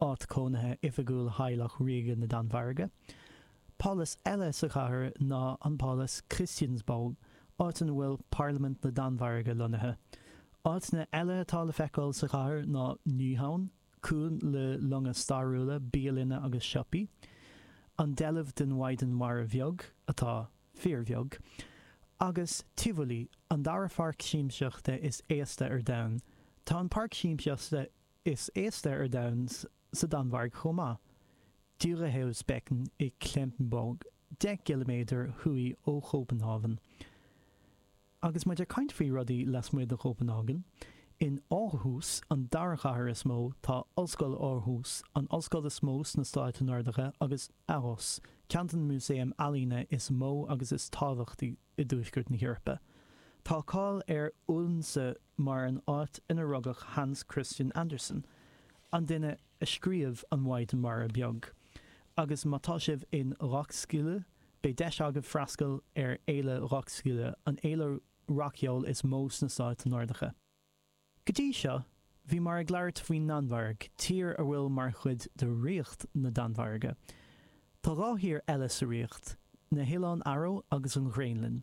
áit chónaithe oifigiúil theaghlach ríoga na Danmhairge. Pálás eile sa chathair ná an Pálás Christiansborg, áit ina bhfuil Parlaimint na Danmhairge lonnaithe. Áiteanna eile atá le feiceáil sa chathair ná Nyhavn, cuan le longa stairiúla, bialanna agus siopaí, an deilbh den Mhaighdean Mhara Bheag, atá fíorbheag, agus Tivoli, an dara pháirc siamsaíochta is aosta ar domhan. Tá an páirc siamsaíochta Is aosta ar domhan sa Danmhairg chomh maith, Dyrehavsbakken i Klampenborg, deich gciliméadar thuaidh ó Chóbanhávan. Agus muid ag caint faoi rudaí lasmuigh de Chóbanhávan, in Aarhus, an dara chathair is mó, tá Ollscoil Aarhus, an ollscoil is mó sna Stáit Nordacha, agus ARoS, ceann de na músaeim ealaíne is mó agus is tábhachtaí i dtuaisceart na hEorpa. Tá cáil ar Odense mar an áit ina rugadh Hans Christian Andersen, an duine a scríobh An Mhaighdean Mhara Bheag, agus má tá sibh in Roskilde, beidh deis agaibh freastal ar Fhéile Roskilde, an fhéile rac-cheoil is mó sna Stáit Nordacha. Go dtí seo, bhíomar ag labhairt faoin nDanmhairg, tír a bhfuil mar chuid de Ríocht na Danmhairge. Tá dhá thír eile sa ríocht, na hOileáin Fharó agus an Ghraonlainn.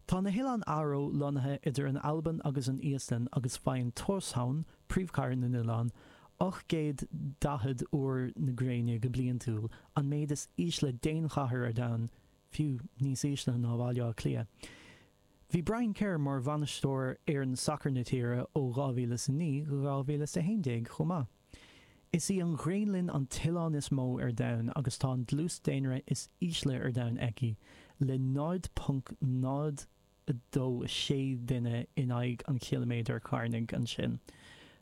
Tá na hOileáin Fharó lonnaithe idir an Albain agus an Íoslainn agus faigheann Tórshavn, príomhchathair na n-oileán, 840 uair na gréine go bliantúil, an méid is ísle d'aon chathair ar domhan, fiú níos ísle ná Bhaile Átha Cliath. Bhí Brian Kerr mar bhainisteoir fhoireann sacair na tíre ó 2009 go 2011 chomh maith. Is í an Ghraonlainn an t-oileán is mó ar domhan agus tá an dlús daonra is ísle ar domhan aici, le 0.026 duine in aghaidh an chiliméadair chearnaigh. Ansin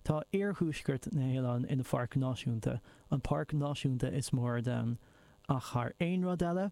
tá iarthuaisceart na hoileáin ina pháirc náisiúnta, an páirc náisiúnta is mó ar domhan, ach thar aon rud eile,